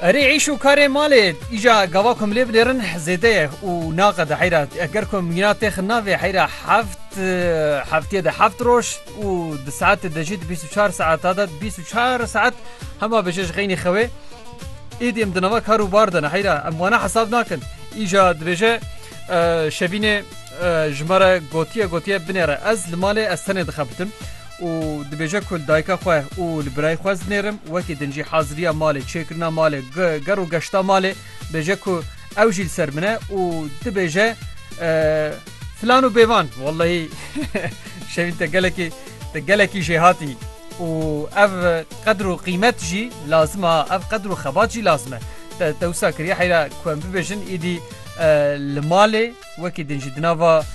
Erê îş û karê malê îja gava ku em lê binêrin zêde ye û naqede heyra eger ku mîna têxin navê heyra heft heftiyê de heft roj û di saetê de jî di bîst û çar saeta de bîst û çar saet hema bije ji xeynî xewê êdî em di nava kar û bar de ne heyra em wana hesab nakin îja dibêje şevînê ji me re gotiye gotiye binêre ez li malê ez tenê dixebitim û dibêje ku li dayika xwe û li birayê xwe znêrim, wekî din jî haziriya malê, çêkirina malê, ger û geşta malê bêje ku ew jî li ser min e û dibêje filan û bêvan wellehî şevîn te gelekî te gelekî jêhatî û ev qedir û qîmet jî lazim a ev qedir û xebat jî lazim e te te wisa kiriye heyra ku em bibêjin îdî li malê Wekî din jî di nava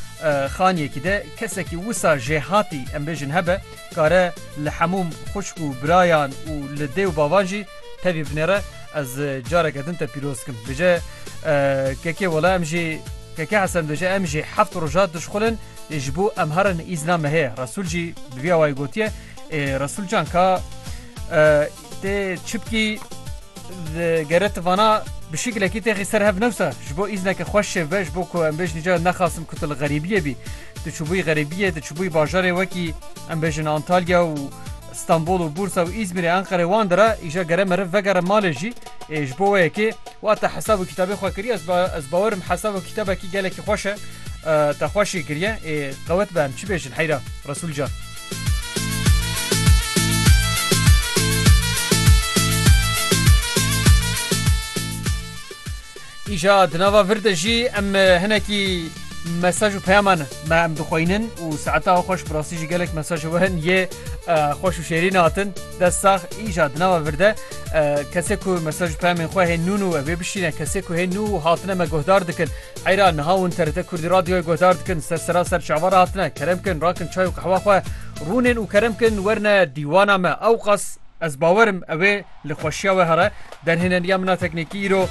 xaniyekî de kesekî wisa jêhatî em bêjin hebe kare li hemûm xwişk û birayan û li dê û bavan jî tevî binêre ez careke din te pîroz dikim. Dibêje kekê wela em jî keke Hesen dibêje em jî heft roja dişxulin ji bo em herin îzna me heye. Resûl jî bi vî awayî gotiye Ê Resûl can ka Tê çipkî gere tu vana bi şekilekî têxî ser hev newsa ji bo îzneke xweş şêv be ji bo ku em bêjin ca nexasim ku tu li xerîbiyê bî tu çûbûyî xerîbiyê tu çûbûyî bajarê wekî em bêjin Antalya û Stanbol û Bursa û Îzmîrê Enqerê wan de re îja gere meriv vegere malê jî ê ji bo we yekê wa te hesab û kitabê xwe kiriye ez ez bawerim hesab û kitabekî gelekî xweş e te xweş jî kiriye ê qewet be em çi bêjin heyra Resûl can. Îja di nava vir de jî em hinekî mesaj û peyaman me em dixweynin û saeta xweş bi rastî jî gelek mesaj ji werin yê xweş û şêrîn hatin dest sax îja di nava vir de kesê ku mesaj û peyamên xwe hê nûn û ev ê bişîne kesê ku hê nû hatine me guhdar dikin Eyra, niha hûn TRT Kurdî Radyoyê guhdar dikin, ser sera ser çavan re hatine, kerem kin rakin çay û qehwa xwe, rûnên û kerem kin werne dîwana me, ewqas ez bawer im ewê li xweşiya we here. Derhêneniya min a teknîkî îro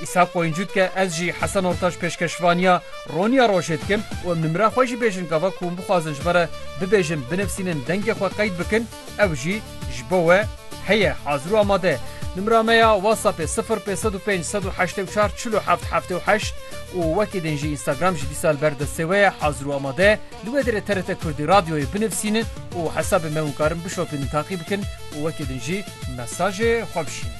Îshak Qoyuncû dike, ez jî Hesen Ortaç pêşkeşvaniya roniya rojê dikim û em nimira xwe jî bêjin gava ku hûn bixwazin ji me re bibêjin, binivîsînin, dengê xwe qeyd bikin. Ew jî ji bo we heye hazir û amade. Nimra me ya WhatsAppê sifir pênc sed û pênc sed û heştê û çar çil û heft heftê û heşt û wekî din jî Instagram jî dîsa li ber destê we ye hazir û amade. Li wê derê TRT Kurdî Radyoyê binivîsînin û hesabê me hûn karin bişopînin taqî bikin û wekî din jî mesajê xwe bişînin.